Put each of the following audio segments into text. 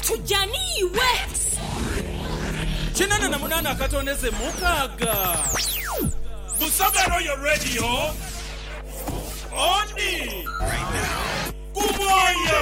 Tuja ni iwe. Kinana na munana akatondeze mukaaga. Busoga Royal Radio odi ku mwoyo.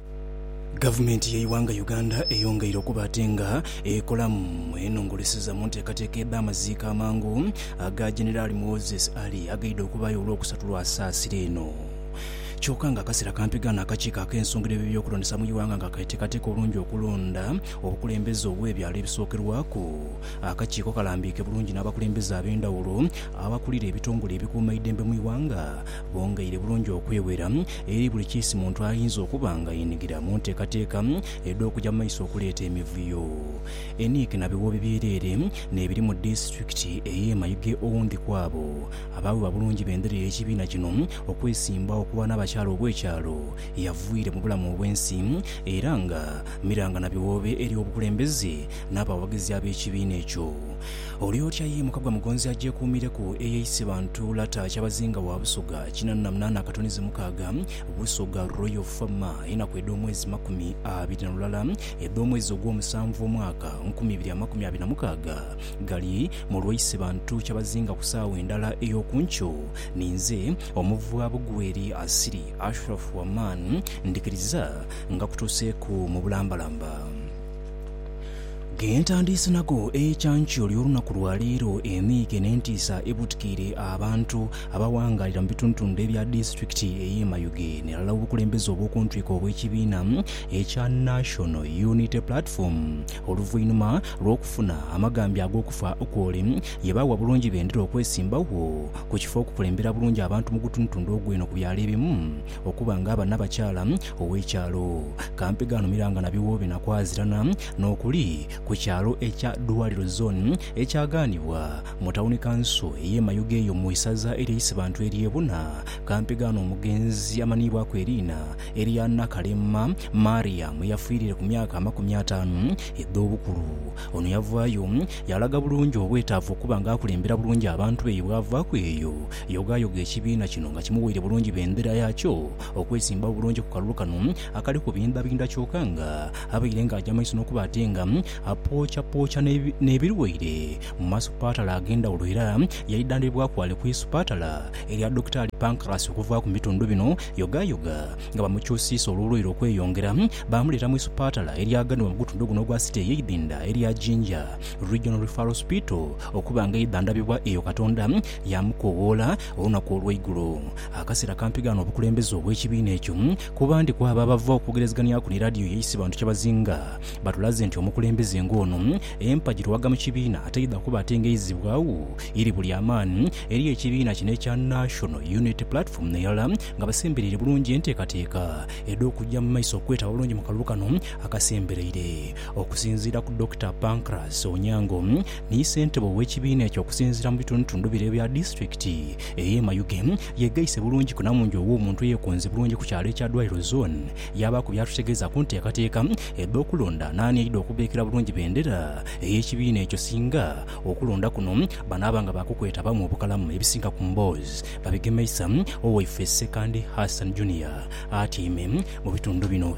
Gavumenti y'eighanga Uganda eyongeire okuba ate nga ekolamu enongoleseza mu nteekateeka edh'amaziika amangu aga Generali Moses Ali agaidha okubaayo olwokusatu lwa saasira eno. Kyoka nga akasera kampi ghano akakiiko ak'ensongra eby'ebyokulondesa mu ighanga nga keteekateeka obulungi okulonda obukulembeze obw'ebyalo ebisookerwaku, akakiiko kalambiike bulungi n'abakulembeze ab'endhawulo abakulira ebitongole ebikuuma eidembe mu ighanga Bongeire bulungi okweghera eri buli kiisi muntu ayinza okuba nga yenigira mu nteekateeka edh'okuja mu maiso okuleeta emivuyo. Enick na biwoobe byereere n'ebiri mu disitulikiti ey'e Mayuge owundi kw'abo abaawebwa bulungi bendera ey'ekibiina kino okwesimbawo okuba n'abakyala obw'ekyalo yavwiire mu bulamu obw'ensi era nga miranga na biwoobe eri obukulembeze n'abawagizi ab'ekibiina ekyo. Oli otya yimuka gwa mugonzi agyekuumireku eye isiba Ntuula ta Kyabazinga wa Busoga kinana na munaana akatonizi mukaaga Busoga Royal Fama Enaku edh'omwezi makumi abiri na lulala edh'omwezi ogw'omusanvu omwaka nkumi ibiri amakumi abiri na mukaaga Gali mu lwa isiba Ntu Kyabazinga ku saawa endala ey'oku nkyo Ninze omuvwa Bugweri Asili Ashraf Aman Ndikiriza nga kutuuseeku mu bulambalamba. Ge ntandiise nago eikyankyo ly'olunaku lwa leero, emiike n'entiisa ebutikiire abantu abawangaalira mu bitundutundu ebya disitulikiti ey'e Mayuge ni ghalala obukulembeze obw'okuntwiko obw'ekibiina ekya National Unity Platform oluvainhuma lw'okufuna amagambya ag'okufa kw'ole ye baagha bulungi bendera okwesimbagho ku kifo okukulembera bulungi abantu mu gutundutundu ogw'eno ku byalo ebimu Okuba nga aba nabakyaala ow'ekyaalo kampi ghanhumira nga nabigho binakwazirana n'okuli ku kyaalo ekya Dwaliro Zone ekyaghanibwa mu Tawuni Kanso ey'e Mayuge eyo mu isaza erye Isibantu erye Buna kampi ghano omugenzi amanhiibwaku eriina erya Nakalema Mariam yafiirire ku myaka amakumi ataanu edh'obukulu. Ono yavaayo yalaga bulungi obwetaavu okuba nga akulembera bulungi abantu be ye bwavaaku eyo Yogaayoga ekibiina kino nga kimuweire bulungi bendera yaakyo okwesimba obulungi ku kalulu kano akali kubindhabindha kyoka nga abaire nga aja maiso n'okuba ate nga apookyapookywa n'ebirwaire mu masupatala ag'endhawulo era yaidhandhibibwaku ghale ku isupatala erya Dokitaali Pancras okuvaaku mu bitundu bino Yogaayoga nga bamukyusiisa olw'obulwaire okweyongera baamuleeta mu isupatala eryaganibwa mu gutundu guno ogwa City ey'eidhindha erya Jinja Regional Referral Hospital okuba nga aidhandhabibwa eyo Katonda Yaamukoowoola olunaku olw'eigulo. Akaseera kampiga n'obukulembeze obw'ekibiina ekyo, kuba ndi ku abo abava okwogerezeghanhiaku ni laadiyo yaisi bantu kyebazinga batulaze nti omukulembeze ng'ono empagi lwaga mu kibiina ataidha kuba atengeizibwa agho iri buli amaani eri ekibiina kino ekya National Unity Platform n'erala nga basembereire bulungi enteekateeka edh'okugya mu maiso okwetaba bulungi mu kalulu kano akasembereire. Okusinziira ku Dokita Pancras Onyango, Ni ssentebe ow'ekibiina ekyo okusinziira mu bitundutundu bire ebya disitulikiti ey'e Mayuge, yeegaise bulungi ku Namungi ow'omuntu eyeekonze bulungi ku kyalo ekya Dwaliro Zone yaabaaku by'atutegeeza ku nteekateeka edh'okulonda n'ani aidha okubeekera bulungi bendera ey'ekibiina ekyo singa okulonda kuno banaaba nga baakukwetabamu obukalamu ebisinga ku mboozi babigemeisa Owaifesi Ssekandi Hassan Junior atyaime mu bitundu bino.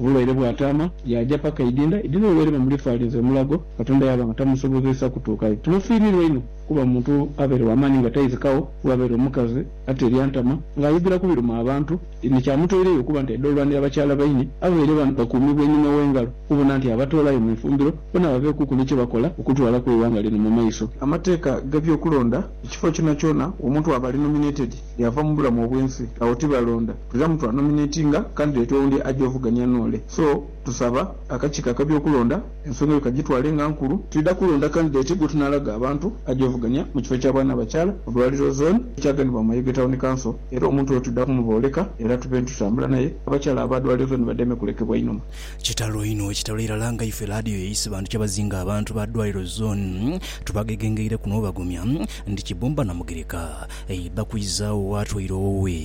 Obulwaire bwataama, yaaja paka Idinda. Idinda olwaire bamulifaalinze omulago, Katonda yaaba nga tamusobozeisa kutuukayo. Tumufiiriirwa inho kuba muntu abaire wa maani nga taizikagho, kuba abaire omukazi ate eryantama ng'ayogera ku biruma abantu. Ni kyamutoireyo okuba nti aidha olwanira bakyala baine abaire bakuumibwa einhuma w'engalo okubona nti abatoolayo mu ifumbiro bona babeekuku ni kye bakola okutwalaku eighanga lino mu maiso. Amateeka g'eby'okulonda, Ekifo kyonakyona omuntu aba ali nominated, Yaava mu bulamu obwensi agho tibalonda tulamu twa nominatinga candidate oundi aje ovugania noole so tusaba akakiiko akabyokulonda ensonga eyo kajitwale nga nkulu twidha kulonda candidate gwetunalaga abantu aje ovugania mu kifo kya bwana bakyala mu dwaliro zone ekyaganibwa mu Mayuge town council era omuntu oyo twidha kumubooleka era tube ntutambula naye abakyala aba dwaliro zone bademe kulekebwa inhuma. Kitalo inho kitalo irala nga ife laadiyo yaise bantu kyabazinga abantu ba dwaliro zone tubagegengeire kuno obagumya nti Kibumba na Mugereka Eiba kwiza agho waatwaire owowe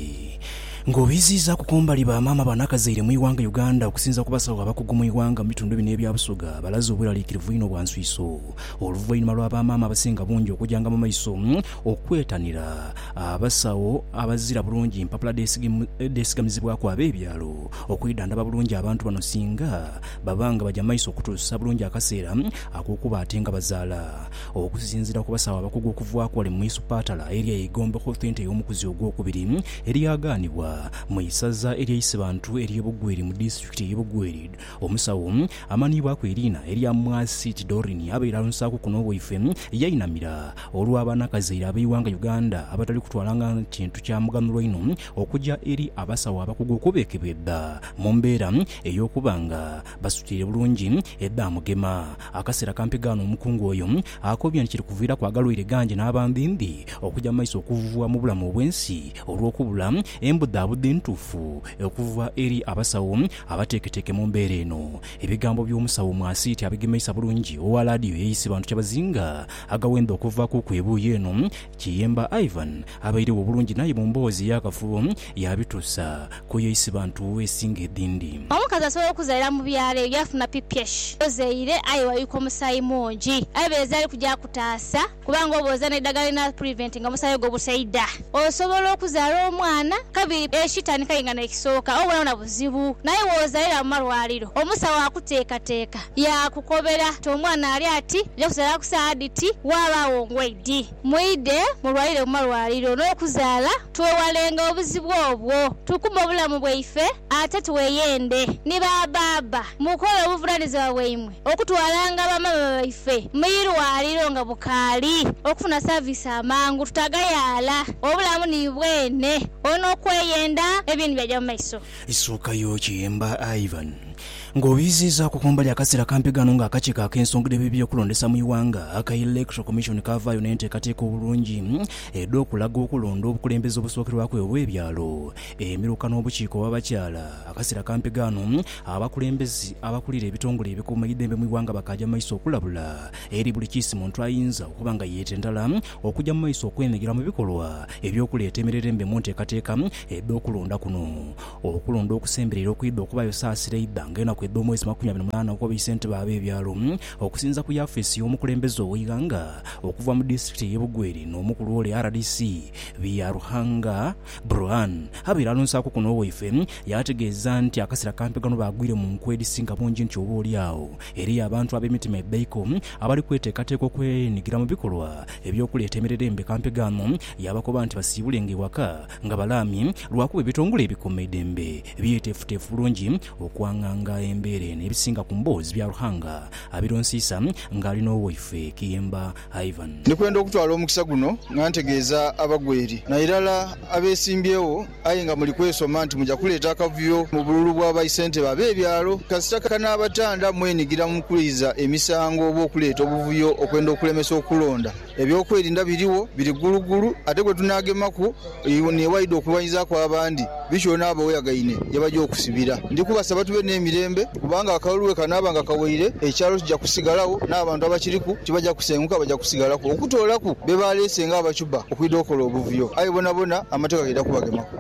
nga obiziizaaku kumbali ba maama ba nakazaire mu ighanga Uganda okusinza ku basawo abakugu mu ighanga mu bitundu bino ebya Busoga balaze obweraliikirivu einho bwa nswiiso oluvainhuma lwa ba maama abasinga bungi okujanga mu maiso okwetanira abasawo abazira bulungi mpapula dhesigamizibwaku ab'ebyalo okwidhandhaba bulungi abantu bano singa baba nga baja maiso okutuusa bulungi akaseera akokuba ate nga bazaala. Okusinzira ku basawo abakugu okuva ku ali mu Isupatala elya Igombe Health Centre ey'omukuzi ogwokubiri elyagaanibwa mu isaza elya Isibantu ery'e Bugweri mu disitulikiti ey'e Bugweri, omusawo amanhiibwaku eriina erya Mwasiti Doreen abaire alonsaaku kuno waife yainamira olwa banakazaire abeighanga Uganda abatali kutwala nga kintu kya muganhulo inho okuja eri abasawo abakugu okubekebedha mu mbeera ey'okuba nga Basitwire bulungi e Bamugema. Akaseera kampi gaano omukungu oyo akoobya nti kiri kuviiraku agalwaire gangi n'abambiimbi okuja mu maiso okuvuvua mu bulamu obw'ensi olw'okubula embudhaabudha entuufu okuva eri abasawo abateeketeeke mu mbeera eno. Ebigambo by'omusawo Mwasiiti abigemeisa bulungi owa laadiyo ey'eisi bantu kyabazinga agawenda okuvaakuuku ebuuyi eno Kiyemba Ivan abairegho obulungi n'aye mu mboozi ey'akafubo yaabitusa kuyo Isibantu esinga edhindi. Omukazi asobola okuzaira mu byalo eyo yaafuna pph ozaire aye wayuyika omusaayi mungi. Aye beereza ali kugya kutaasa kubanga oba oza n'eidhagala erinaapuriventinga omusaayi ogwo obusaidha, osobola okuzaala omwana kabiri ekitandika aye nga n'ekisooka obubonabona buzibu. Naye wozairira mu malwaliro, omusawo akuteekateeka. Yaakukobera ti omwana ali ati, nja kuzaala ku saagha dhiti, waabaagho ngwei dhi. Mwidhe mulwalire mu malwaliro n'okuzaala, twewalenga obuzibu obwo, tukuume obulamu bwaife ate tweyende. Ni ba baaba, mukole obuvunaanizibwa bwaimwe okutwalanga ba maama baife mu irwaliro nga bukaali, okufuna saviisi amangu, tutagayaala, obulamu ni bwene, olwo n'okweyenda eby'endhu byaja mu maiso. Isuukayo kiyemba Ivan, ng'oyiziizaaku kumbali akaseera kampi ghano ng'akakiiko ak'ensonga dh'ebyekulondesa mu ighanga aka Electoral Commission kaavaayo n'enteekateeka obulungi edh'okulaga okulonda obukulembeze obusookerwaku obw'ebyalo, emiruka n'obukiiko obw'abakyala. Akaseera kampi ghano abakulembeze abakulira ebitongole ebikuumaidembe mu ighanga bakaaja mu maiso okulabula eri buli kiisi muntu ayinza okuba nga yeetendala okuja mu maiso okwenhigila mu bikolwa eby'okuleeta emirerembe mu nteekateeka edh'okulonda kuno. Okulonda okusembereire okwidha okubaayo saasira eidha nga enaku edh'omwezi makumi abiri mulano ogwa baisentebe ab'ebyalo okusinza ku yafeesi y'omukulembeze ow'eighanga okuva mu disitirikiti ey'e Bugweri n'omukulu ole rdc Byaruhanga Bruhan abaire alonsaaku kuno owaife yaategeeza nti akasera kampi gano baagwire mu nku edhisinga bungi nti oba oli agho Eriyo abantu ab'emitima ebeiku abali kweteekateeka okwenhigira mu bikolwa eby'okuleeta emirerembe mpekampegaamu, yaabakoba nti basiibulenga ewaka nga balaamye lwakuba ebitongole ebikuuma eidembe byeteefuteefu bulungi okwanganga embeera eno ebisinga ku mboozi bya Ruhanga abironsiisa ng'ali n'owaifwe Kiyemba. Ivan. Ndi kwenda okutwala omukisa guno nga ntegeeza abagweri nairala abeesimbyewo aye nga muli kwesoma nti muja kuleeta akavuyo mu bululu bwa baisentebe ab'ebyalo kasita kanaabatanda mwenigira mu kwiza emisango oba okuleeta obuvuyo okwenda okulemesa okulonda. Ebyokwerinda biriwo biri gguluggulu ate gwe tunaagemaku Ni waidha okulwanyiza ku abandi, bityo n'abaweyagaine ye baja okusibira. Ndi kubasaba tube n'emirembe, kubanga akalulu bwe kanaaba nga kaweire, ekyalo kija kusigalagho, n'abantu abakiriku tibaja kusenguka, baja kusigalaku, okutoolaku be baaleese ng'abachuba okwidha okola obuvuyo. Aye bonabona Amateeka gaidha kubagemaku.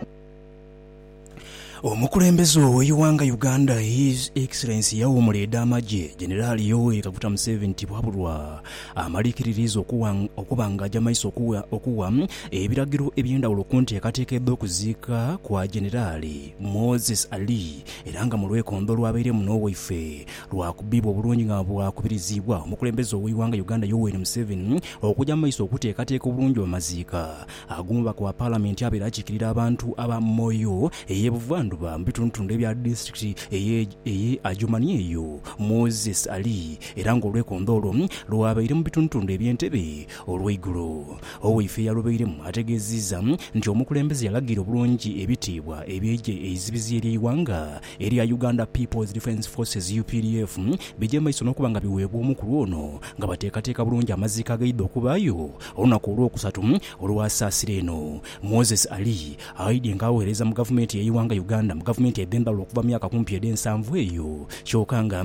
Omukulembeze ow'eighanga Uganda His Excellency Yawuumula Ed'amagye Generali Yoweri Kaguta Museveni tibwabulwa amaliikiririiza okuba nga aja maiso okuwa ebiragiro eby'endhawulo ku nteekateeka edh'okuziika kwa Generali Moses Ali era nga mu lwekondo olwabairemu n'owaife lwakubibwa obulungi nga bwakubiriziibwa omukulembeze ow'eighanga Uganda Yoweri Museveni okuja maiso okuteekateeka obulungi amaziika Ag'omubaka wa Palamenti abeera akiikirira abantu aba Moyo eye Buvandhuba mu bitundutundu ebya disitulikiti eye eye Adjumani eyo Moses ali era nga olwekondo olwo lwabaire mu bitundutundu ebye Entebbe olweigulo owaifee yalubairemu ategeziiza nti omukulembeze yalagira obulungi ebitiibwa ebye igye eizibizi erye ighanga erya Uganda People's Defence Forces, updf, bigye maiso n'okuba nga biweebwa omu ku lwono nga bateekateeka bulungi amaziiko agaidha okubaayo olunaku Olwokusatu olwa saasira eno. Moses Ali, aidye nga aweereza mu gavumenti y'eighanga Uganda mu gavumenti edh'endhawulo okuva mu myaka kumpi edh'ensanvu eyo kyoka nga,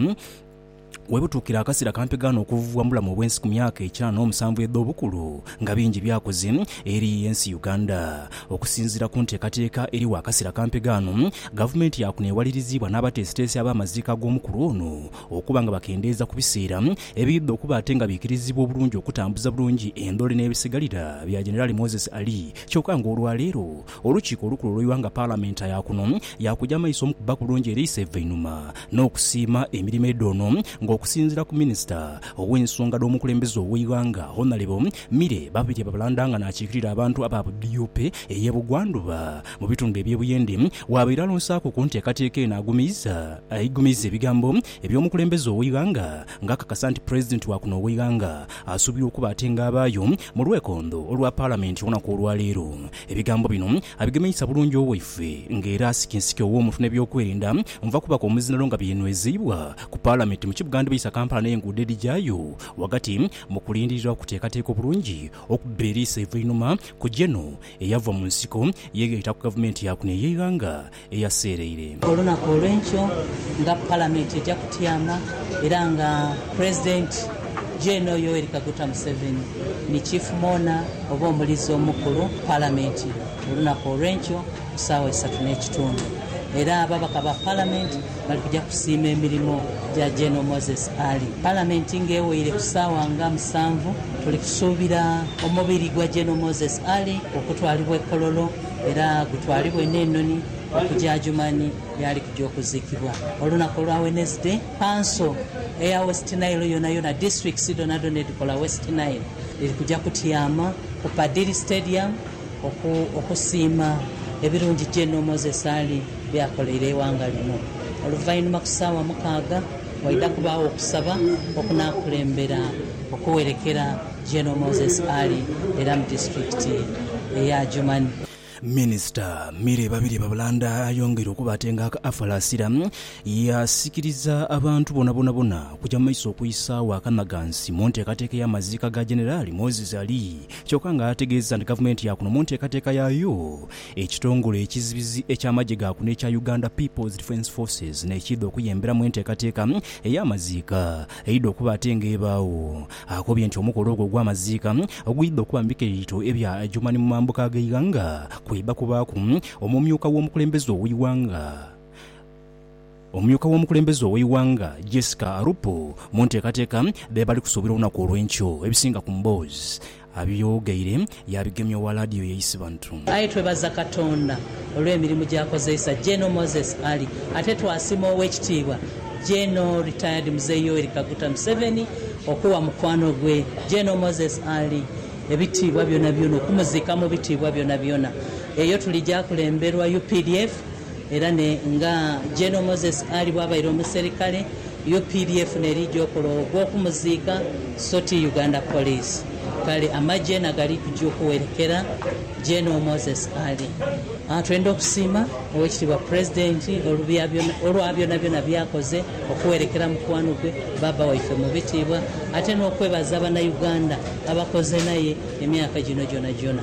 Webutuukira akasera kampegaano okuvuvwa mubulamu obwensi kumyaka ekya n'omusanvu edhobukulu nga bingi byakoze eri ensi Uganda. Okusinziira kunteekateeka eriwo akasera kampegaano, gavumenti yakunewaliriziibwa n'abateesiteesi ab'amaziika ag'omukulu ono okuba nga bakendeeza kubiseera ebiidha okuba ate nga biikiriziibwa obulungi okutambuza bulungi endhole n'ebisigalira bya Generali Moses Ali kyoka nga olwaleero Olukiiko olukulu olw'eighanga Paalamenta ya kuno yaakuja maiso mu kubba kulungi eri Isevvainhuma n'okusiima emirimo edhoono nga okusinziira ku Minisita ow'ensonga dh'omukulembeze ow'eighanga Honalebo Milly Babirye Babalanda nga n'akiikirira abantu aba DUP ey'e Bugwandhuba mu bitundu eby'e Buyende waabaire alonsaaku ku nteekateeka eno agumiiza ebigambo eby'omukulembeze ow'eighanga nga akakasa nti Pulezidenti wa kuno ow'eighanga asuubirwa okuba atenga abaayo mu lwekondho olwa Paalamenti olunaku olwaleero. Ebigambo bino abigemeisa bulungi owaife nga era Nsikinsiki ow'omuntu n'ebyokwerinda nva kubaku omuzinano nga byenwezeibwa ku Palamenti mu kibuga ndibisa Kampala n'enguudo edhigyayo ghagati mu kulindirira okuteekateeka obulungi okubba eriiso eiveinhuma ku General eyava mu nsiko ye eyaita ku Gavumenti yakuno ey'eighanga eyaseereire. Olunaku olwenkyo nga palamenti eja kutyama era nga pulezidenti Gen Yoweri Kaguta Museveni ni chief mourner oba omulizi omukulu ku palamenti olunaku olwenkyo ku saawa isatu n'ekitundu era ababaka ba palamenti bali kuja kusiima emirimo gya Gen Moses Ali. Palamenti nga eweire ku saawa nga musanvu, tuli kusuubira omubiri gwa Gen Moses Ali okutwalibwa e Kololo. era gutwalibwe n'enoni okuja Adjumani yaali kuja okuzikibwa olunaku olwa Wednesday. Kanso eya West Nile yonayona, districts dhonadhona edhikola West Nile dhiri kuja kutyama ku Padiri Stadium oku okusiima ebirungi General Moses Ali byakoleire eighanga lino. Oluvainhuma ku saawa mukaaga waidha kubaagho okusaba okunakulembera okuwerekera. General Moses Ali era mu disitulikiti eye Adjumani. Minisita Milly Babirye Babulanda ayongera okubatenga aka Afalasira, yaasikiriza abantu bonabonabona okuja mu maiso okwisaagho akanhagansi mu nteekateeka ey'amaziika ga Generali Moses Ali kyoka nga ategeeza nti gavumenti yaakuno mu nteekateeka yaayo ekitongole ekizibizi eky'amagye gaakuno ekya Uganda People's Defence Forces n'ekiidha okuyemberamu enteekateeka ey'amaziika eidha okuba ate ng'ebaagho Akobye nti omukolo ogwo ogw'amaziika ogwidha okuba mu bikeito ebya Adjumani mu mambuka g'eighanga kwidha kubaaku omumyuka w'omukulembeze ow'eighanga omumyuka w'omukulembeze ow'eighanga Jessica Alupo mu nteekateeka dhebali kusuubira olunaku olw'enkyo. Ebisinga ku mboozi abyogeire Yaabigemya owa laadiyo ye Isibantrum. Aye twebaza Katonda olw'emirimu gy'akozeisa General Moses Ali ate twasima Ow'ekitiibwa General Retired Mzee Yoweri Kaguta Museveni okuwa mukwano gwe General Moses Ali ebitiibwa byonabyona okumuziika mu bitiibwa byonabyona. Eyo tuli gyakulemberwa updf Era ne nga General Moses Ali bwabaire omuserikale, updf nerija okola ogho gwokumuziika so ti Uganda Police. Kale amagye nagali kuja okuwerekera General Moses Ali. Aah twenda okusiima Owekitiibwa President olwa byonabyona byakoze okuwerekera mukwano gwe Baaba waife mubitiibwa ate nokwebaza banaUganda abakoze naye emyaka gino gyonajona.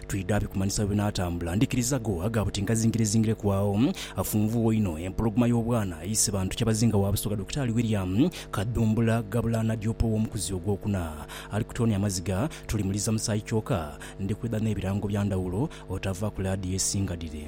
Twidha bikumanhisa bwe binaatambula. Ndhikiriza go aga buti ngazingirezingire ku agho. Afunvugho inho empologoma y'obwana eise bantu Kyabazinga wa Busoga Dokitaali William Kadhumbula Gabula Nadiope ow'omukuzi ogwokuna. Ali kutoonia maziga, tulimuliza musaayi kyoka ndi kwidha n'ebirango bya ndhawulo otava ku laadiyo esinga dhire.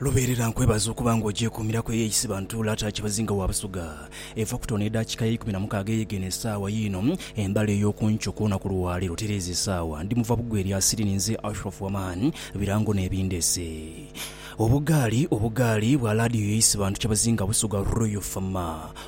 Lubeerera nkwebaza okuba nga ogyekuumiraku eyeeyisibwa ntuula ate akyebazinga wa Busoga. Eva kutono edaakiika ya ikumi na mukaaga eyegeene esaawa yiino embale ey'okunkyo okw'olunaku lwaleero tereeza esaawa ndi muva bugwe erya siri ninze Ashraf Waman birango n'ebindeese obugaali obugaali bwa laadiyo yeeyisibwa ntu kyebazinga Busoga Royal Fm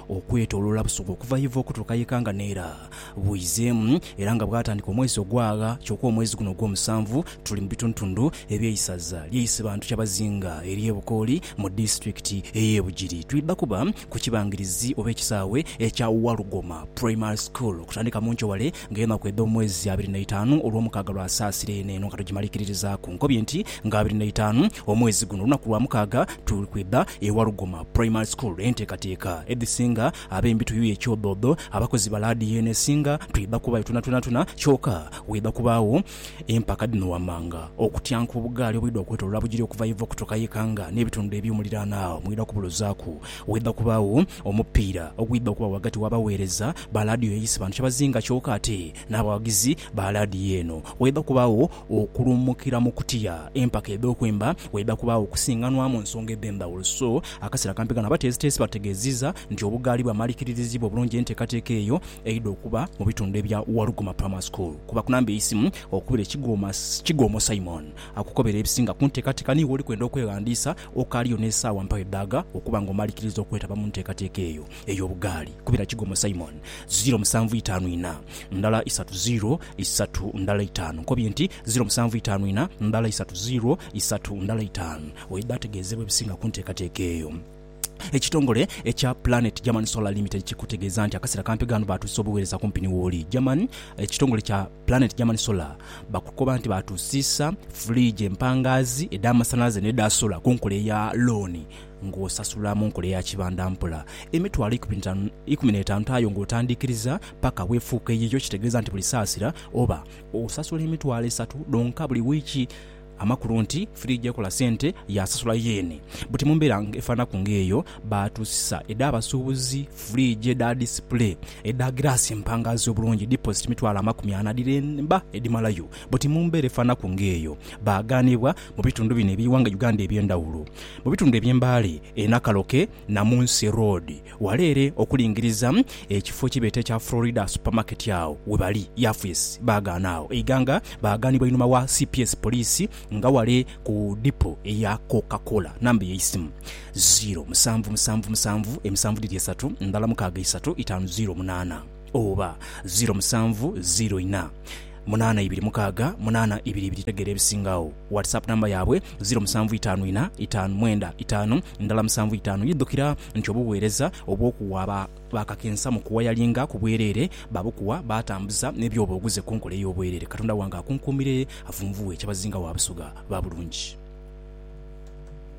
okwetoloola Busoga okuva y'eva okutuuka y'ekanga n'era bwizeemu era nga bwatandika omwezi ogwagha kyoka omwezi guno ogwomusanvu tuli mu bituntundu eby'eisaza lye Isibantu Kyabazinga ery'e Bukooli mu disitulikiti ey'e Bugiri. Twidha kuba ku kibangirizi oba ekisaawe ekya Walugoma Primary School okutandika mu nkyo wale nga enaku edh'omwezi abiri n'eitaanu olwomukaaga lwasaasira eno eno nga tugimalikiririzaaku nkobye nti nga abiri n'eitaanu omwezi guno olunaku lwamukaaga tuli kwidha e Walugoma Primary School enteekateeka edhisinga Abembi tuyuye kyodhoodho, abakozi ba laadiyo eno esinga twidha kubaayo twonatwonatwona, kyoka waidha kubaagho empaka dhino wammanga. Okutyanka obugaali obwidha okwetolola bugiri okuva Ivo okutuuka ye Kanga n'ebitundu eby'omuliraano agho mwidha kubulozaaku. Waidha kubaagho omupiira ogwidha okuba ghagati w'abaweereza ba laadiyo eyise bantu kyabazinga kyoka ate N'abawagizi ba laadiyo eno, waidha kubaagho okuluumukira mu kutya. Empaka edh'okwemba waidha kubaagho okusinganwa mu nsonga edh'endhawulo. So, akaseera kampi kano abateesiteesi bategeezizza nti obugaali bwamalikirirziibwa obulungi enteekateeka eyo eidha okuba mu bitundu ebya Waluguma Primary School. Kuba ku namba y'eisimu okubire Kigoma Kigoomo Simon akukobere ebisinga ku nteekateeka ni w'oli kwenda okweghandiisa. Okaaliyo n'esaawa mpaayo dhaaga okuba ng'omalikirirza okwetaba mu nteekateeka eyo. ey'obugaali kubira kigomo Simon, ziro musanvu itaanu ina, ndala isatu ziro isatu ndala itaanu. Nkobye nti, ziro musanvu itaanu ina, ndala isatu ziro isatu ndala itaanu. Oidha ategeezebwa ebisinga ku nteekateeka eyo. Ekitongole ekya Planet German Solar Limited kikutegeeza nti akaseera kampi ghano baatuusisa obuweereza kumpi ni wooli. German, Ekitongole kya Planet German Solar bakukoba nti baatuusisa fridge empangaazi edh'amasanhalaze n'edha solar ku nkola eya looni. ng'osasula mu nkola eya kibanda mpola, emitwalo ikumi n'etaanu aye ng'otandiikiriza paka bw'efuuka eyiyo, ekitegeeza nti buli saasira oba osasula emitwalo esatu dhonka buli wiiki. Amakulu nti firiigi ekola sente yaasasula yeene. Buti mu mbeera efaananaku ng'eyo, baatuusisa edh'abasuubuzi, firiigi edha disipule, edha giraasi empangaaze obulungi, diposit mitwalo amakumi ana dhiremba edhimalayo. Buti mu mbeera efaananaku ng'eyo, baagaanibwa Mu bitundu bino eby'eighanga Uganda eby'endhawulo, mu bitundu eby'e Mbale, e Nakaloke, Namunsi Road, wala ere okulingiriza ekifo ekyebeeta ekya Florida Supermarket agho webali yafesi baagaana agho eighanga baagaanibwa einhuma wa cps Poliisi nga wale ku dipo eya Coca Cola. Namba ey'eisimu, ziiro musanvu musanvu musanvu emisanvu dhiri esatu ndhala mukaaga isatu itaanu ziiro munaana. oba ziro musanvu ziro ina munaana ibiri mukaaga munaana ibiri ibiri tegeera ebisinga agho. Whatsapp number yaabwe ziro musanvu itaanu ina itaanu mwenda itaanu ndala musanvu itaanu Idhukira nti obuweereza obw'okuwa ba baakakensa mu kuwayalinga ku bwereere, baabukuwa baatambuza n'ebyoba oguze ku nkola ey'obwereere. Katonda wange akunkuumire avunvughe kyabazinga wa Busoga ba bulungi.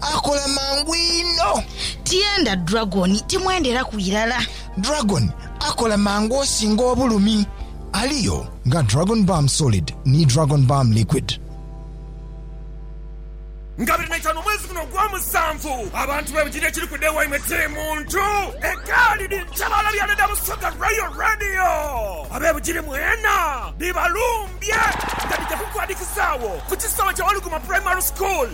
Akola mangu inho. Tyenda Dragon, timwenderaku irala. Dragon akola mangu osinga obulumi. Aliyo nga Dragon Balm Solid ni Dragon Balm Liquid. Nga biri naitano omwezi guno ogwomusanvu, abantu bebujirire ekiri ku day waimwe tiri muntu egaali ni ntabaala bya Leda Busoga Royal Radio. Abebujiri mwena bibalumbye nga dija kukuadikizaagho ku kisaawe kya Waluguma Primary School.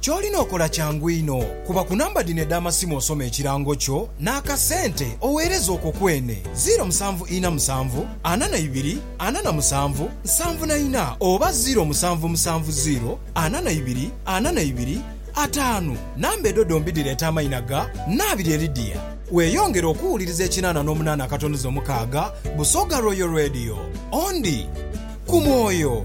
Ky'olina okola kyangu inho, kuba ku namba dhino edh'amasimu osome ekirango kyo n'akasente oweereze okwo kwene, ziiro musanvu ina musanvu, ana na ibiri, ana na musanvu, nsanvu na ina oba ziiro musanvu musanvu ziiro, ana na ibiri, ana na ibiri, ataanu. Namba edho dhombi dhireeta amaina ga Naabirye Lydia. Weeyongere okuwuliriza ekinaana n'omunaana akatonuzo mukaaga Busoga Royal Radio. Ondi ku mwoyo.